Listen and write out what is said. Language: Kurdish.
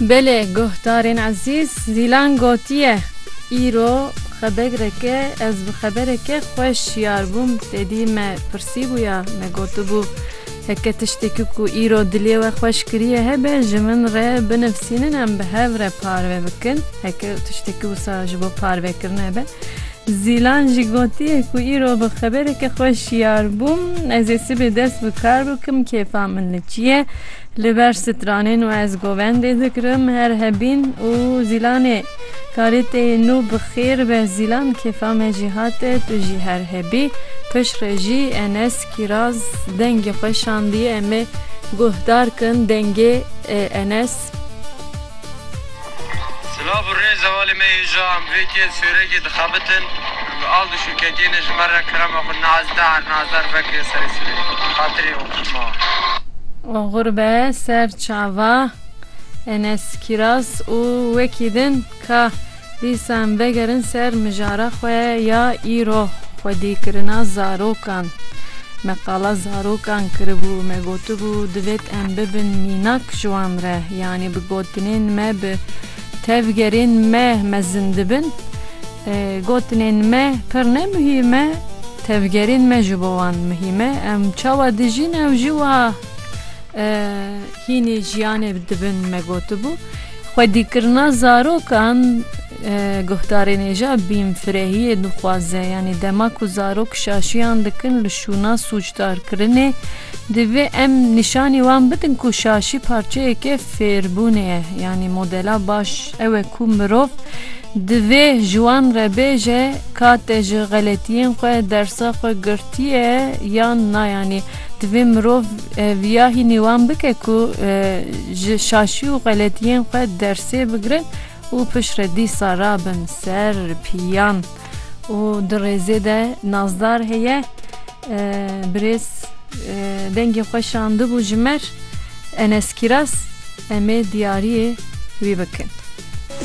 Belê guhdarên ezîz, Zîlan gotiye, Îro xebegreke ez bi xebereke xwe şiyar bûm, te dî me pirsîbûya, me gotibû heke tiştekî ku îro dilê we xweş kiriye hebe ji min re binivîsînin em bi hev re parve bikin, heke tiştekî wisa ji bo parvekirine be Zîlan jî gotiye ku îro bi xebereke xwe şiyar bûm, Ez ê sibê dest bi kar bikim, kêfa min li çi ye? Li ber stranên we ez govendê dikirim, her hebîn û Zîlanê karê tê ye nû bi xêr be Zîlan kêfa me jî hate, tu jî her hebî. Piştre jî Enes Kîraz dengê xwe şandiye em ê guhdar kin dengê Enes. Silav û rê zevalê me yê ji amvêkê yên sêrekê dixebitin û al dişûketiyê ne ji me re kerema xwe nazdar nazdar vekiriye serê sirê bi xatirê oxşma. Oxur be ser çava Enes Kîraz û wekî din ka. Dîsan vegerin ser mijara xwe ya îro xwedîkirina zarokan. Me qala zarokan kiribû, me gotibû divêt em bibin mînak ji wan re, yanî bi gotinên me bi tevgerên me mezin dibin. Gotinên me pir ne muhîm e, tevgerên me ji bo wan muhîm e. Em çawa dijîn ew jî wiha hînî jiyanê dibin me gotibû. Xwedîkirina zarokan, guhdarên êja bînfirehiyê dixwaze, yanî dema ku zarok şaşiyan dikin li şûna sûcdarkirinê, divê em nîşanî wan bidin ku şaşî parçeyeke fêrbûnê ye, yanî modela baş ew e ku mirov divê ji wan re bêje ka te ji xeletiyên xwe dersa xwe girtiye yan na, yanî Divê mirov viya hînî wan bike ku ji şaşî û xeletiyên xwe dersê bigirin û piştre dîsa rabin ser piyan û di rêzê de nazdar heye birêz dengê xwe şandibû ji me Enes Kîras em ê diyariyê wî bikin.